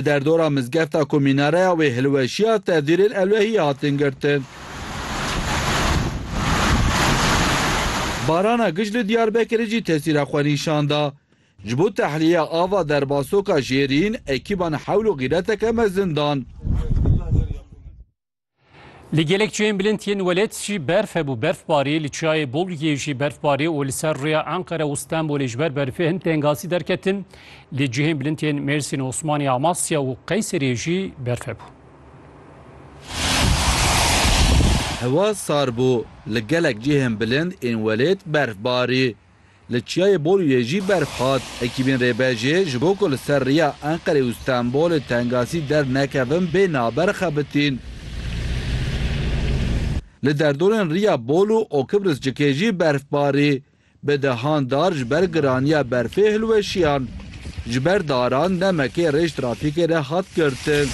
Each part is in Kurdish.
Di derdora mizgefta ku mînareya wê hilweşiya tevdîrên ewlehiyê hatin girtin. Barana giş li Diyarbekirê jî tesîra xwe nîşan da. Ji bo tehliyeya ava derbasoka jêrîn ekîban hewl û xîreteke mezin dan. Li gelek çiyên bilind yên welêt jî berf hebû. Berfbarî li çiyayê Bolgiyê jî berfbarî û li ser rûya Enqere û Stenbolê ji ber berfê hin tengasî derketin. Li cihên bilind yên Mêrsîn, Osmanî, Amasya û Qeyseriyê jî berf hebû. Hewa sar bû. Li gelek cihên bilind ên welêt berfbarî Li Çiyayê Borûyê jî berf hat. Ekîbên Rêbejê ji bo ku li ser rêya Enqerê û Stenbolê tengasî dernekevin bê naber xebitîn. Li derdorên rêya Bol û Okibrıscikê jî berf barî. Bi dehan dar ji ber giraniya berfê hilweşiyan. Ji ber daran nemekê rêj trafîkê re hat girtin.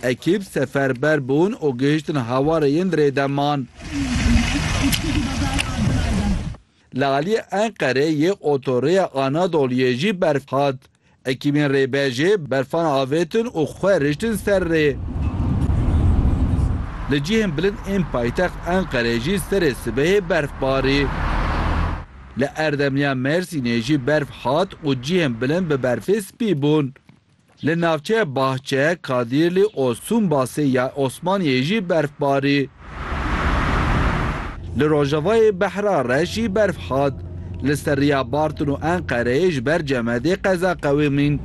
Ekîp seferber bûn û gihiştin hawarê yên Rêdeman. Li aliyê Enqerê yê otorêya Anadoluyê jî berf hat. Ekîbên rêbejê berfan avêtin û xwe riştin ser rê. Li cihên bilind ên paytext Enqerê jî serê sibehê berf barî. Li Erdemliya Mêrsînê jî berf hat û cihên bilind bi berfê spî bûn. Li navçeya Bahçe, Kadirli û Sûnbasê ya Osmaniyê jî berf barî. Li rojavayê Behra re jî berf hat. Li ser riya Bartin û Enqereyê ji ber cemedê qeza qewimîn.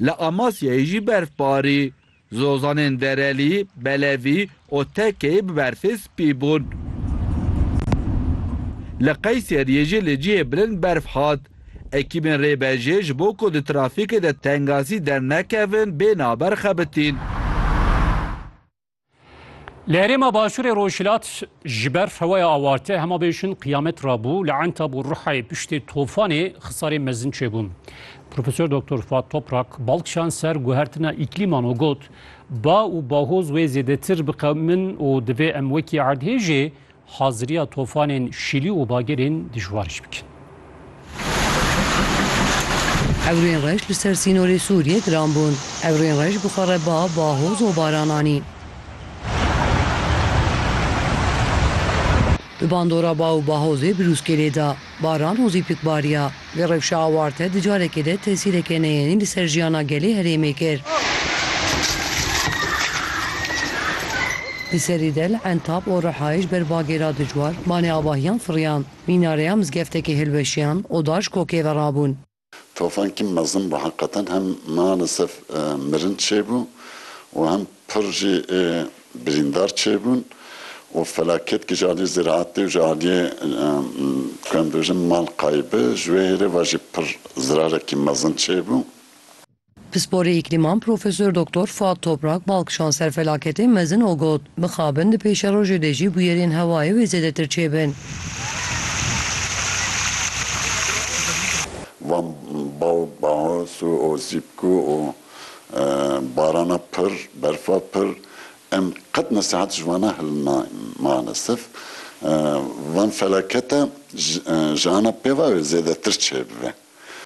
Li Amasyayê jî berf barî. Zozanên Derelî, Belevî û Tekeyî bi berfê spî bûn. Li Qeyseriyê jî li cihê bilind berf hat. Ekîbên rêbejê ji bo ku di trafîkê de tengasî dernekevin bê naber xebitîn. Li herêma başûrê rojhilat ji ber feweya awarte hema bêjin qiyamet rabû li Entab û Ruhayê piştê tofanê xisarên mezin çêbûn. Profesor Doktor Fuat Toprak bal kişand ser guhertina îklîman û got, Ba û bahoz wê zêdetir biqewimin û divê em wekî erdhêjê Haziriya tofanên Şîlî û Bagirên dijwar jî bikin. Ewrên reş li ser sînorê Sûriyê giran bûn. Ewrên reş bi xwe re ba, bahoz û baran anî. Bi bandora ba û bahozê birûskê lê da. Baran û zîpikbariya vê rewşa awarte di carekê de tesîreke neyênî li ser jiyana gelê herêmê kir. Di serî de li Entab û Rihayê ji ber bagêra dijwar banê avahiyan firiyan, mînareya mizgeftekê hilweşiyan û dar ji kokê ve rabûn. Tofankî mezin bû heqeten hem malesef mirin çêbû û hem pir jî ê birîndar çêbûn û felaketkî ji aliyê ziraetê û ji aliyê ku em dibêjin mal kaybê ji wê hêrê ve jî pir zirarekî mezin çêbû. Pisporê Îklîman Profesor Doktor Fuat Toprak Balk şanser felaketê mezin o got, Bixabin di pêşerojê de jî bûyerên hewayê wê zêdetir çêbin. Van Balk Baos û Osîpko û barana pir, berfa pir em qet nesihat ji wan hil nayên. Malesef van felakete ji ana pêva wê zêdetir çêbibe.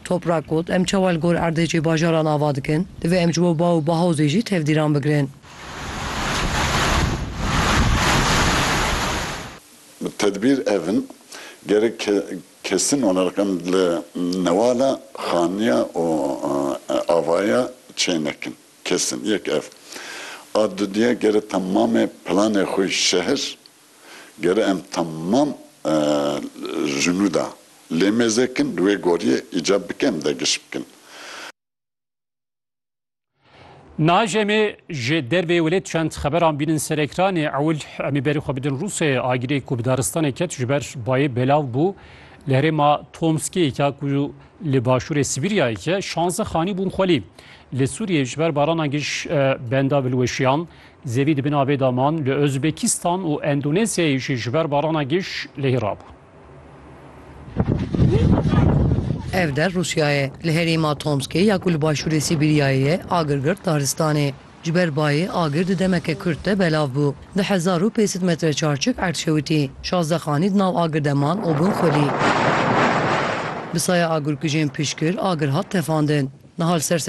Toprak got, Em çawa li gor erdhêjê bajaran ava dikin? Divê em ji bo ba û bahozê jî tevdîran bigirin. Tedbîr ev in, gerek kesin olarak em li newala xaniya û avaya çê nekin. Kesin. Yek ev. A dudîya gerek temamê planê xwe ji şehir Ger em temam ji nû de lê mêzê kin li wê goriyê îcab bike em de giş bikin. Naj em ê ji derveyê welêt çend xeberan bînin ser ekranê. Ewil em ê berê xwe bidin Rûsyayê. Agirê ku bi daristanê ket ji ber bayê belav bû. Li herêma Tomskiyêka ku li başûrê Sibîryayê ye şanze xanî bûn xwelî. Li Sûriyê ji ber barana giş benda bilweşiyan Zevî di bin avê de man, li Ozbekistan û Endonezyayê jî ji ber barana giş lehî rabû. Ev der Rûsya ye. Li herêma Tomskê ya ku li başûrê Sîbîryayê ye agir girt daristanê. Ji ber bayê agir di demeke kurt de belav bû. Di hezar û pêncî sed metre çarçik erd şewitî. Şazdeh xanî di nav agir de man û bûn xwelî. Bi saya agirkujên piştgir agir hat tefandin. Niha li ser